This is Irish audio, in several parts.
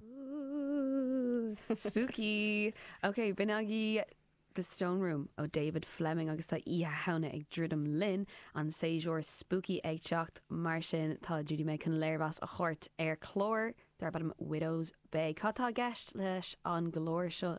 Ooh! Spooky! Ok, b'in é The Stone Room ó David Fleming agus tá Oíche Shamhna ag druidim linn, an séasúr spooky ag teacht, mar sin tá Judy May chun léirmheas a thabhairt ar chlár darb ainm Widow's Bay. Cad tá i gceist leis an gclár seo?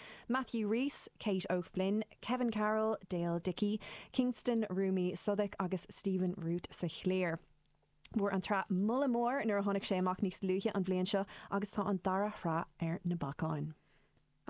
Matthew Rhys, Kate O'Flynn, Kevin Carroll, Dale Dickey, Kingston Rumi Southwick agus Stephen Root sa chliar. Fuair an tsraith moladh mór nuair a tháinig sé amach níos luaithe an bhliain seo agus tá an dara shraith ar na bacáin.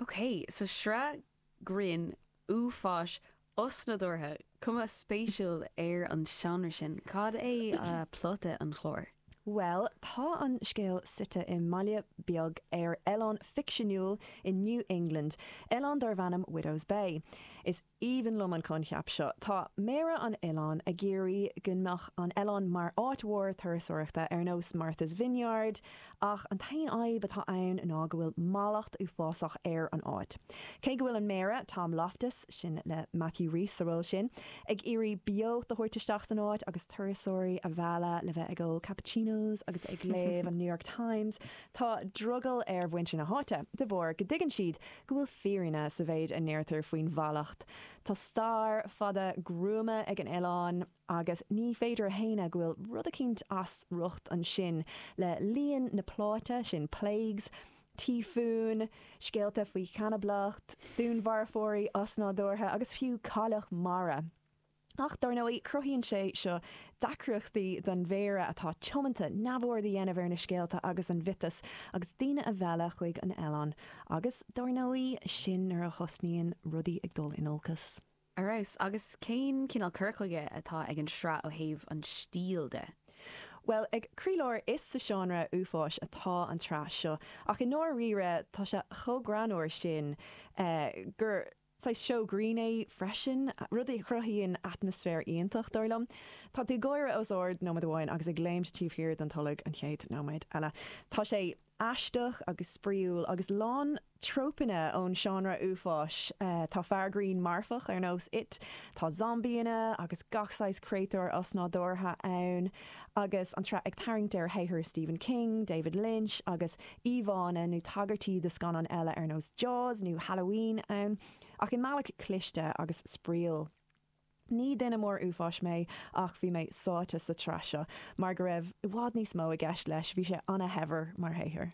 Okay, so sraith grinn, uafáis, Osnádúrtha, cuma spéisiúil ar an seánra sin. Cad é plota an chláir? Bhuel, tá an scéal suite i mbaile beag ar oileán ficseanúil i New England, oileán darb ainm Widow's Bay. Is aoibhinn liom an coincheap seo. Tá méara an oileáin ag iarraidh go mbeadh an oileán mar áit mhór turasóireachta ar nós Martha's Vineyard ach an t-aon fhadhb atá ann ná go bhfuil mallacht uafásach ar an áit. Cé go bhfuil an Méara, Tom Loftis, sin le Matthew Rhys sa ról sin, ag iarraidh beocht a thabhairt isteach san áit agus turasóirí a mhealladh le bheith ag ól cappuccinos agus ag léamh an New York Times, tá drogall ar mhuintir na háite de bharr go dtuigeann siad go bhfuil fírinne sa mhéid a ndeirtear faoin mhallacht. Tá stair fada gruama ag an oileán. agus ní féidir a shéanadh go bhfuil rud eicínt as riocht ansin le líon na bplánna sin plagues, tíofúin, scéalta faoi chanablacht, dúnmharfóirí osnádúrtha agus fiú cailleach mara. Ach dár ndóigh, cruthaíonn sé seo deacrachtaí don mhéara atá tiomanta neamhaird a dhéanamh ar na scéalta agus an miotas agus daoine a mhealladh chuig an oileán agus dár ndóigh sin nuair a thosnaíonn rudaí ag dul in olcas. Ar fheabhas. Agus cén cineál cur chuige atá ag an sraith ó thaobh an stíl de? Bhuel, ag croílár is sa seánra uafáis atá an tsraith seo, ach i ndáiríre tá sé chomh greannúr sin gur saghas seó grinn é freisin, rud a chruthaíonn atmaisféar iontach, dar liom. Tá tú ag gáire os ard nóiméad amháin agus ag léimt taobh thiar den tolg an chéad nóiméad eile. Tá sé Aisteach agus spraíúil, agus lán trópanna ón seánra uafáis, tá fear grinn marfach ar nós It, tá zombaíonna agus gach saghas créatúir osnádúrtha ann, agus an tsraith ag tarraingt ar shaothair Stephen King, David Lynch, agus íomhánna nó tagairtí do scannáin eile ar nós Jaws nó Halloween ann, ach i mbealach cliste agus spraíúil. Ní duine mór uafáis mé ach bhí mé sáite sa tsraith seo mar go raibh i bhfad níos mó i gceist leis, bhí sé ana-shaibhir mar shaothar.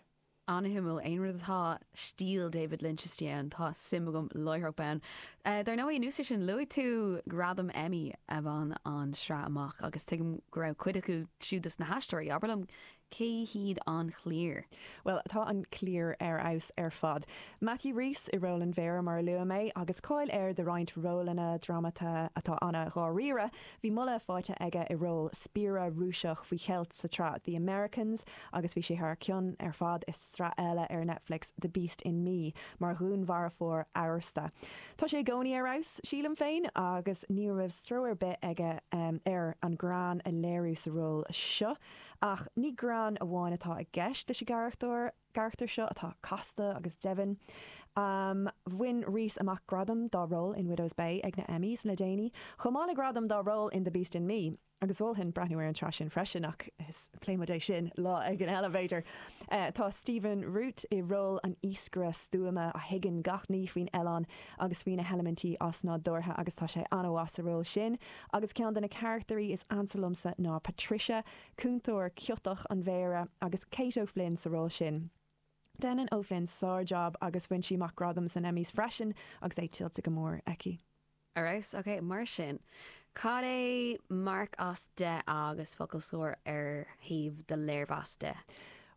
Ana-shuimiúil. Aon rud atá stíl David Lynch istigh ann, tá suim agam láithreach bonn. Dar ndóigh, anuas air sin, luaigh tú gradam Emmy a bhain an tsraith amach agus tuigim go raibh cuid acu siúd do na haisteoirí. Abair liom Cé hiad an chliar? Bhuel, tá an chliar ar fheabhas ar fad. Matthew Rhys i ról an Mhéara, mar a luaigh mé, agus cáil air do roinnt rólanna drámata atá ana-dháiríre. Bhí moladh faighte aige i ról spiaire Rúiseach faoi cheilt sa tsraith The Americans agus bhí sé thar cionn ar fad i sraith eile ar Netflix, The Beast in Me, mar dhúnmharfóir amhrasta. Tá sé i gcónaí ar fheabhas, sílim féin, agus ní raibh stró ar bith aige ar an ghreann a léiriú sa ról seo. Ach ní greann amháin atá i gceist leis an gcarachtar seo atá casta agus domhain. Bhain Rhys amach gradam dá ról in Widow's Bay ag na Emmys le déanaí, chomh maith le gradam dá ról in The Beast in Me, agus mholfainn breathnú ar an tsraith sin freisin, ach pléifidh muid é sin lá éigin eile, b'fhéidir. Tá Stephen Root i ról an iascaire stuama a thuigeann gach ní faoin oileán agus faoi na heilimintí osnádúrtha agus tá sé an-mhaith sa ról sin. agus ceann de na carachtairí is ansa liomsa ná Patricia, cúntóir ciotach an Mhéara, agus Kate O'Flynn sa ról sin. Déanann O'Flynn sár-jab agus bhain sí amach gradam sna Emmys freisin agus é tuillte go mór aici. Ar fheabhas. Ok, mar sin, cad é marc as deich agus focal scoir ar thaobh do léirmheas de?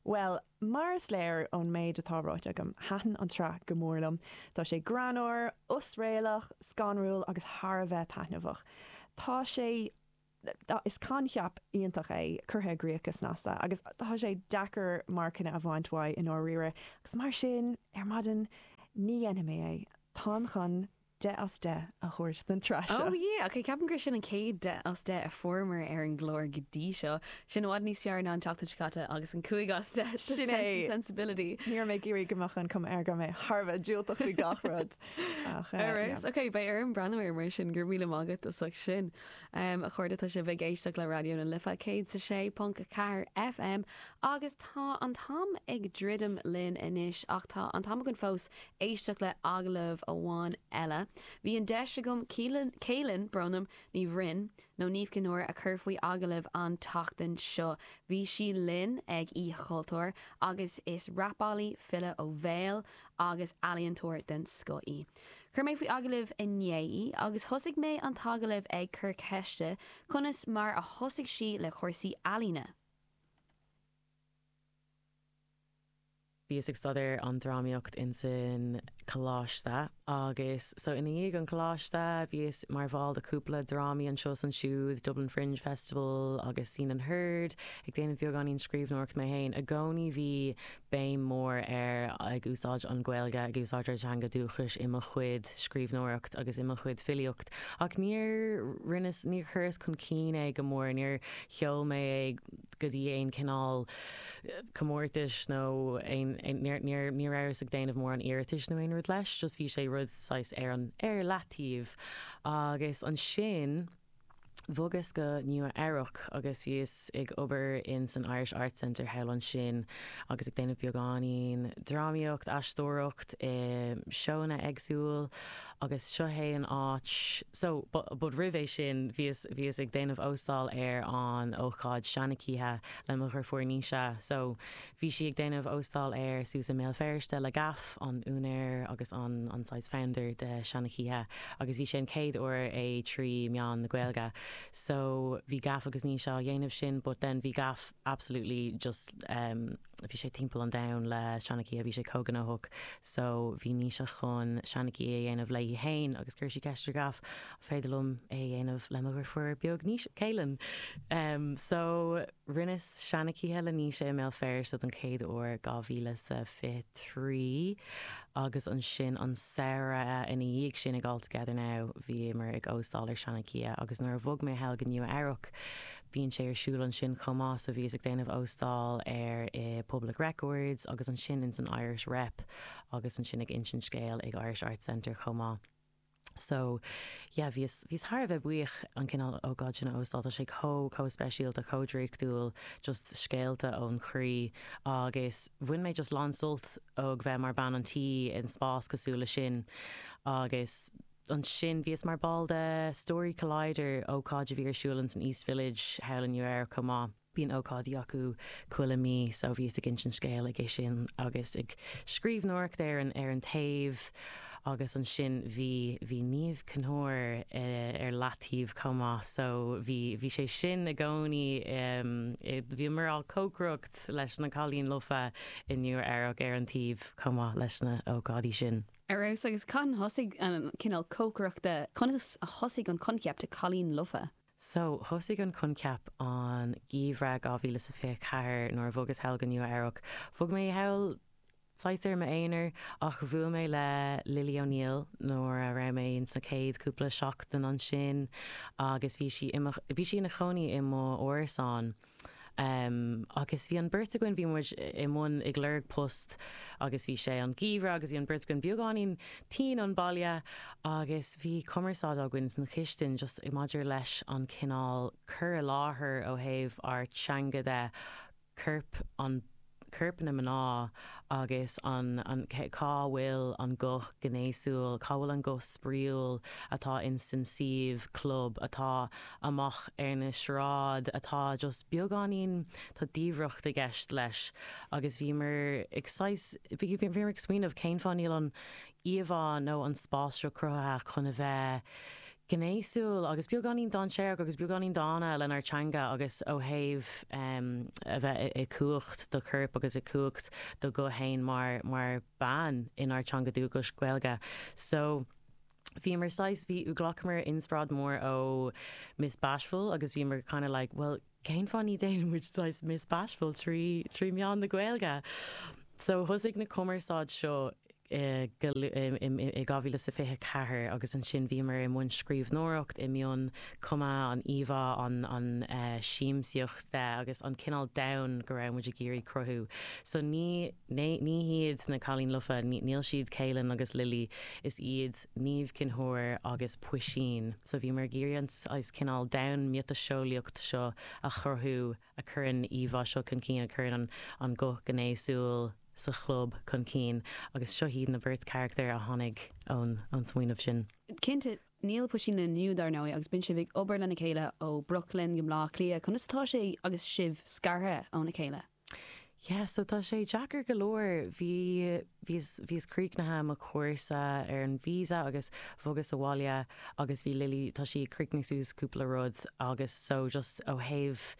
Bhuel, mar is léir ón méid atá ráite agam, thaitin an tsraith go mór liom. Tá sé greannmhar, osréalach, scanrúil agus thar a bheith taitneamhach. Tá sé. is coincheap iontach é, curtha i gcríoch go snasta, agus tá sé deacair marcanna a bhaint uaidh i ndáiríre, agus mar sin, ar maidin, ní dhéanfaidh mé é. Táim chun. deich as deich a thabhairt don tsraith seo. Ó ie, ok, ceapaim gur sin an chéad deich as deich a fuaireamar ar an gclár go dtí seo. Sin i bhfad níos fearr ná an tseachtain seo caite agus an cúig as deich do Sense and Sensibility. Ní raibh mé ag iarraidh go mbeadh an cuma air go raibh mé thar a bheith diúltach faoi gach rud ach ie. Ar fheabhas. Ok, beidh orm breathnú air mar sin. Go raibh míle maith agat as ucht sin. A chairde, tá sibh ag éisteacht le Raidió na Life 106.4 FM agus tá an t-am ag druidim linn anois ach tá an t-am againn fós éisteacht le agallamh amháin eile, bhí an deis agam Caoilfhionn Bronwyn Ní Bhroin, nó Niamh Chinn Óir, a chur faoi agallamh an tseachtain seo. Bhí sí linn ag Oíche Chultúir agus is rapálaí, file ó bhéal agus ealaíontóir den scoth í. Chuir mé faoi agallamh inné í agus thosaigh mé an t-agallamh ag cur ceiste conas mar a thosaigh sí le cúrsaí ealaíne. Bhíos ag staidéar an drámaíocht insan coláiste agus so i ndiaidh an coláiste bhíos mar bhall de cúpla drámaí anseo is ansiúd, Dublin Fringe Festival agus Scene and Heard, ag déanamh beagáinín scríbhneoireacht mé féin. I gcónaí bhí béim mór ar ag úsáid an Ghaeilge, ag úsáid ár dteanga dúchais i mo chuid scríbhneoireacht agus i mo chuid filíocht ach níor rinneas, níor chuireas chun cinn é go mór, níor sheol mé é. go dtí aon chineál comórtais nó aon, níor, ní rabhas ag déanamh mórán iarratais nó aon rud leis, just bhí sé rud saghas ar an, ar leataobh. Agus ansin bhogas go Nua Eabhrac agus bhíos ag obair in san Irish Arts Center thall ansin agus ag déanamh beagáinín drámaíocht, aisteoireacht i seóanna éagsúil Agus seo hé an áit so, but roimh é sin, bhíos, bhíos ag déanamh óstáil ar an ócáid Seanchoíche le mo dheirfiúr Naoise, so bhí sí ag déanamh óstáil air suas i mBéal Feirste le Gaff, an úinéir agus an, an saghas founder de Seanchoíche agus bhí sé an chéad uair é trí meán na Gaeilge. So bhí Gaff agus Naoise á dhéanamh sin but then bhí Gaff absolutely just, bhí sé timpeall an domhain le Seanchoíche, bhí sé chomh gnóthach so bhí Naoise chun Seanchoíche a dhéanamh léi féin agus chuir sí ceist ar Gaff an féidir liom é a dhéanamh le mo dheirfiúr beag Naoise, Kaylin. So rinneas Seanchoíche le Naoise i mBéal Feirste don chéad uair 2023 agus ansin an samhradh ina dhiaidh sin ag All Together Now bhíomar ag óstáil ar Seanchoíche agus nuair a bhog mé thall go Nua Eabhrac Bíonn sé ar siúl ansin chomh maith, so bhíos ag déanamh óstáil air i Public Records agus ansin ins an Irish Rep agus ansin ag insint scéil ag Irish Arts Center chomh maith. So, yeah, bhíos, bhíos thar a bheith buíoch an cineál ócáid sin a óstáil, tá sé chomh, chomh speisialta, chomh draíochtúil, just scéalta ón chroí agus bhain mé just lán-sult ó bheith mar bean an tí in spás cosúil leis sin agus, Ansin bhíos mar ball de Story Collider, ócáid a bhí ar siúl ins an East Village thall i Nua Eabhrac chomh maith. Bíonn ócáidí acu chuile mí so bhíos ag insint scéil ag é sin agus ag scríbhneoireacht ar an ar an taobh agus ansin bhí bhí Niamh Chonóir ar leataobh chomh maith so bhí bhí sé sin i gcónaí i bhíomar á cócaireacht leis na cailín lofa i Nua Eabhrac ar an taobh chomh maith leis na ócáidí sin. Ar fheabhas, agus cathain thosaigh an cineál cócaireachta, conas a thosaigh an coincheap de 'cailín lofa'? So, thosaigh an coincheap an geimhreadh 2024 nuair a bhogas thall go Nua-Eabhrac. Bhog mé thall saghas ar m'aonar, ach bhuail mé le Lily O'Neill nuair a raibh mé ins na céad cúpla seachtain ansin, agus bhí sí i mo, bhí sí ina chónaí i mo árasán. Agus bhí an bheirt againn, bhí muid i mbun, ag lorg post agus bhí sé an geimhreadh agus bhí an bheirt againn beagáinín tinn ón baile agus bhí cumarsáid againn san chistin just i maidir leis an cineál cur i láthair ó thaobh ár teanga de, corp an. coirpeanna mná agus an cá bhfuil an guth gnéasúil, cá bhfuil an guth spraíúil atá in san suíomh club atá amach ar an sráid atá just beagáinín, tá diamhracht i gceist leis agus bhíomar ag saghas, bhíomar ag smaoineamh cén fáth níl an íomhá nó an spás seo cruthaithe chun a bheith gnéasúil agus beagáinín dainséarach agus beagáinín dána lenár dteanga agus ó thaobh a bheith i gcumhacht do choirp agus i gcumhacht do ghuth fhéin mar bean inár dteanga dúchais, Gaeilge. So bhíomar saghas, ghlacamar inspioráid mór ó Miss Bashful agus bhíomar kinda like, bhuel, cén fáth ní dhéanann muid saghas Miss Bashful trí meán na Gaeilge? So thosaigh na cumarsáid seo i 2024 agus ansin bhíomar i mbun scríbhneoireacht i mbun cumadh an íomhá an an eh siamsaíocht de agus an cineál domhan go raibh muid ag iarraidh cruthú. So ní, ní hiad na cailín lofa níl siad Caoilfhionn agus Lily is iad Niamh Chinn Óir agus Puisín. So bhíomar ag iarraidh an saghas cineál domhan miotaseolaíocht seo a chruthú a chuireann an íomhá seo chun cinn, a chuireann an guth gnéasúil sa chlub chun cinn agus seo iad na beirt charachtar a tháinig ón smaoineamh sin. Cinnte, níl Puisín linn inniu dar ndóigh agus bíonn sibh ag obair lena chéile ó Brooklyn go Bleá Cliath, conas atá sé agus sibh scartha óna chéile? Yeah, so tá sé deacair go leor. Bhí, bhíos, bhíos críochnaithe mo chúrsa ar an visa agus bhogas abhaile agus bhí Lily, tá sí ag críochnú suas cúpla rud agus so just ó thaobh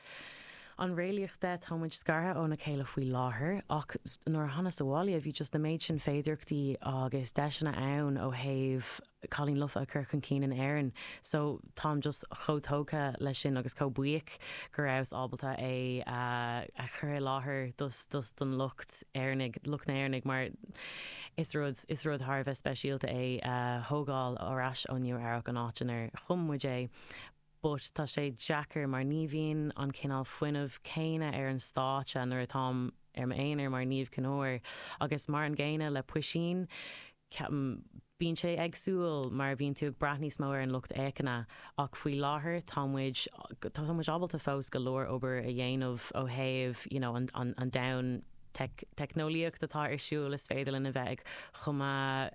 an réalaíocht de, tá muid scartha óna chéile faoi láthair ach nuair a thánas abhaile bhí just na méid sin féidireachtaí agus deiseanna ann ó thaobh cailín lofa a chur chun cinn in Éirinn. So táim just chomh tógtha leis sin agus chomh buíoch go rabhas ábalta é a chur i láthair don lucht Éireannaigh, lucht na hÉireannaigh mar is rud, is rud thar a bheith speisialta é a thógáil ar ais ó Nua-Eabhrac, an áit inar chum muid é. but tá sé deacair mar ní bhíonn an cineál fuinnimh céanna ar an stáitse nuair atáim ar m'aonar mar Niamh Chinn Óir agus mar an gcéanna le Puisín, ceapaim, bíonn sé éagsúil mar bhíonn tú ag brath níos mó ar an lucht féachana ach faoi láthair tá muid, tá muid ábalta fós go leor obair a dhéanamh ó thaobh you know an domhan teicneolaíocht atá ar siúl is féidir linn a bheith ag cumadh,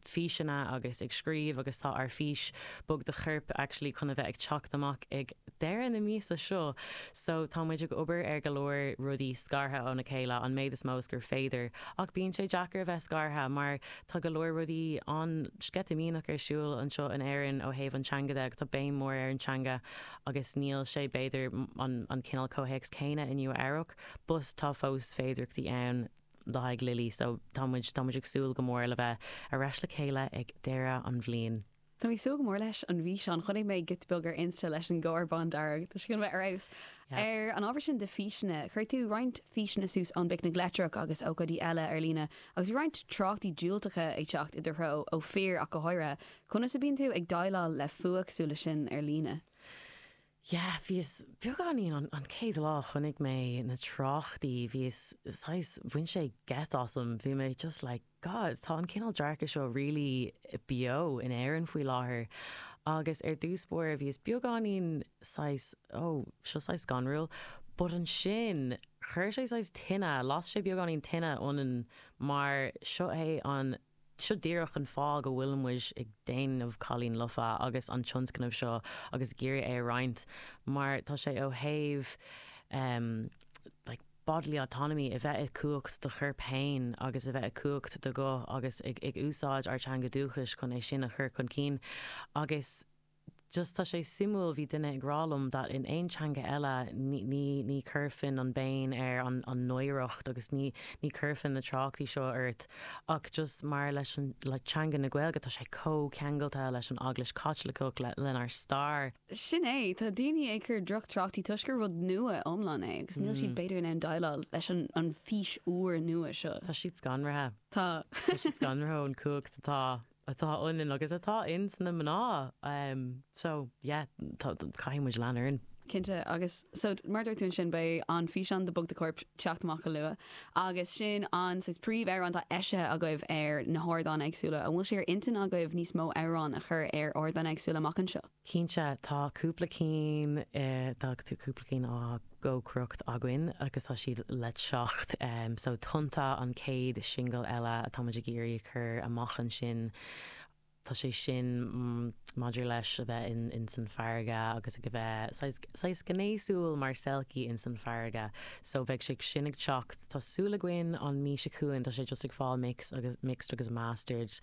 físeanna agus ag scríobh agus tá ár fís bog do choirp actually chun a bheith ag teacht amach ag deireadh na míosa seo so tá muid ag obair ar go leor rudaí scartha óna chéile an méad is mó is gur féidir ach bíonn sé deacair a bheith scartha mar tá go leor rudaí an-sceitimíneach ar siúl anseo in Éirinn ó thaobh an teanga de agus tá béim mór ar an teanga agus níl sé b'fhéidir an an cineál comhthéacs céanna i Nua-Eabhrac but tá fós féidireachtaí ann le haghaidh Lily so tá muid tá muid ag súil go mór le bheith ar ais le chéile ag deireadh an bhliain. Tá mé ag súil go mór leis an bhfíseán. Chonaic mé giota beag ar Insta leis an gcarr bándearg. Tá sé chun bheith ar fheabhas. Ar an ábhar sin de físeanna, chuir tú roinnt físeanna suas ón bPicnic Leictreach agus ócáidí eile ar líne agus bhí roinnt tráchtaí diúltacha ag teacht i do threo, ó fir ach go háirithe. Conas a bíonn tú ag déileáil le fuath cosúil leis sin ar líne? Yeah, bhíos beagáinín, an, an chéad lá a chonaic mé na tráchtaí, bhíos saghas, bhain sé geit asam, bhí mé just like, God, tá an cineál dearcadh seo really beo in Éirinn faoi láthair. Agus ar dtús báire bhíos beagáinín saghas, oh, seo saghas scanrúil, but ansin chuir sé saghas tine, las sé beagáinín tine ionainn mar seo é an, Seo díreach an fáth go bhfuil muid ag déanamh Cailín Lofa agus an tionscnamh seo agus ag iarraidh é a roinnt mar tá sé ó thaobh em like bodily autonomy, a bheith i gcumhacht do choirp fhéin agus a bheith i gcumhacht do ghuth agus ag ag úsáid ár teanga dúchais chun é sin a chur chun cinn agus. just tá sé suimiúil, bhí duine ag rá liom that in aon teanga eile ní, ní, ní chuirfinn an bhéim ar an, an náireacht agus ní, ní chuirfinn na tráchtaí seo ort ach just mar leis an, le teanga na Gaeilge, tá sé chomh ceangailte leis an Eaglais Chaitliceach, le, lenár stair. Sin é, tá daoine ag cur drochthráchtaí toisc gur rud nua iomlán é agus níl siad b'fhéidir in ann déileáil leis an, an fís úr nua seo. Tá siad scanraithe. Tá. Tá siad scanraithe ón chumhacht atá. atá ionainn agus atá ins na mná ehm so yeah tá caithfidh muid lean orainn. Cinnte, agus so mar a dúirt tú ansin beidh an físeán de Bog do Chorp teacht amach go luath agus sin an saghas príomhamhrán atá eisithe agaibh ar na hardáin éagsúla. An bhfuil sé ar intinn agaibh níos mó amhráin a chur ar ardáin éagsúla amach anseo? Cinnte, tá cúpla cinn, tá cúpla cinn á gcócaireacht againn agus tá siad le teacht. So Tonnta an chéad singil eile atá muid ag iarraidh a chur amach ansin. Tá sé sin maidir leis a bheith in san farraige agus ag a bheith saghas gnéasúil mar selkie in san farraige. So beidh sé sin ag teacht. Tá súil againn an mí seo chugainn, tá sé just ag fáil mix agus, mixed agus mastered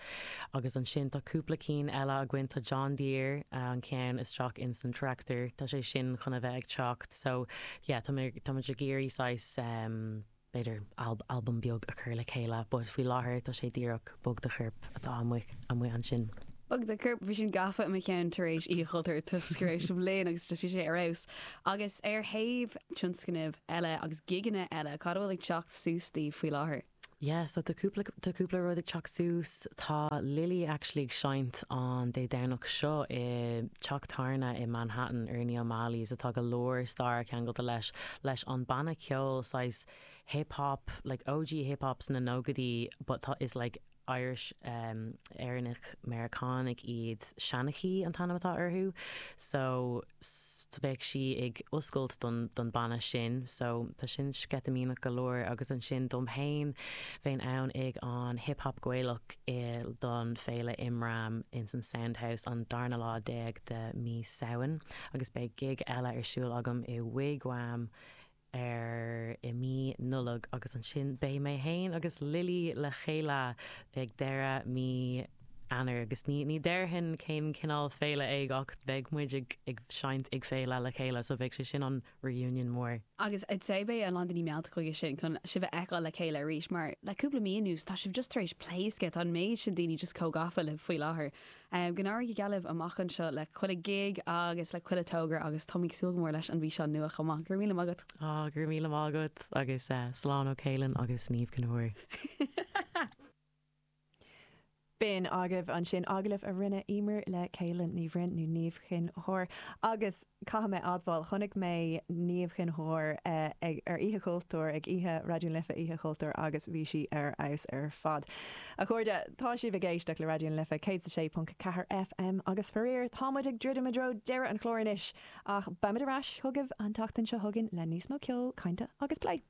agus ansin tá cúpla cinn eile againn, tá John Deere an ceann Isteach insan Tractor, tá sé sin chun a bheith ag teacht so yeah tá mé, tá muid ag iarraidh saghas ehm b'fhéidir alb, album beag a chur le chéile but faoi láthair tá sé díreach Bog do Chorp atá amuigh, amuigh ansin. Bog do Chorp, bhí sin gafa i mo cheann tar éis Oíche Chultúir toisc tar éis an bhliain agus just bhí sé ar fheabhas Agus ar thaobh tionscnaimh eile agus gigeanna eile, cad a bhfuil ag teacht suas daoibh faoi láthair? Yeah, so tá cúpla, tá cúpla rud ag teacht suas. Tá Lily actually ag seinnt an Dé Domhnach seo i dteach tábhairne i Manhattan, Ernie O'Malley's, atá go leor staire ceangailte leis leis an banna ceoil saghas hip hop, like OG hip hop sna nóchaidí but tá, is like, Irish, Éireannaigh, Meiriceánaigh iad, Seanchaí an t-ainm atá orthu so beidh sí ag oscailt don don banna sin so tá sin sceitimíneach go leor agus ansin dom fhéin bheinn ann ag an Hip Hap Gaelach i don Féile Imram ins an Sound House an darna lá déag de mí Samhain agus beidh gig eile ar siúl agam i Wig Wam i air i mí Nollag agus ansin beidh mé féin agus Lily le chéile ag deireadh mí Eanáir agus ní ní déarfainn cén cineál féile é ach beidh muid ag ag seinnt ag féile le chéile so beidh sé sin an reunion mór. Agus I'd say beidh a lán daoine meallta chuige sin chun sibh a fheiceáil le chéile arís mar le cúpla mí anuas tá sibh just tar éis pléascadh tá an méid sin daoine just chomh gafa libh faoi láthair. Go n-éirí go geal libh amach anseo le chuile ghig agus le chuile togra agus táim ag súil go mór leis an bhfíseán nua chomh maith. Go raibh míle maith agat! Go raibh míle maith agat agus slán ó Chaolan agus Niamh Chinn Óir. B'in agaibh ansin agallamh a rinne Emer le Caolan Ní Bhroin, nó Niamh Chinn Óir, agus. caithfidh mé a admháil, chonaic mé Niamh Chinn Óir ag, ar Oíche Chultúir, ag oíche Raidió na Life Oíche Chultúir agus bhí sí ar fheabhas ar fad. A chairde, tá sibh ag éisteacht le Raidió na Life 106.4 FM agus faraor, tá muid ag druidim i dtreo deireadh an chláir anois ach beimid ar ais chugaibh an tseachtain seo chugainn le níos mó ceoil, cainte agus plé.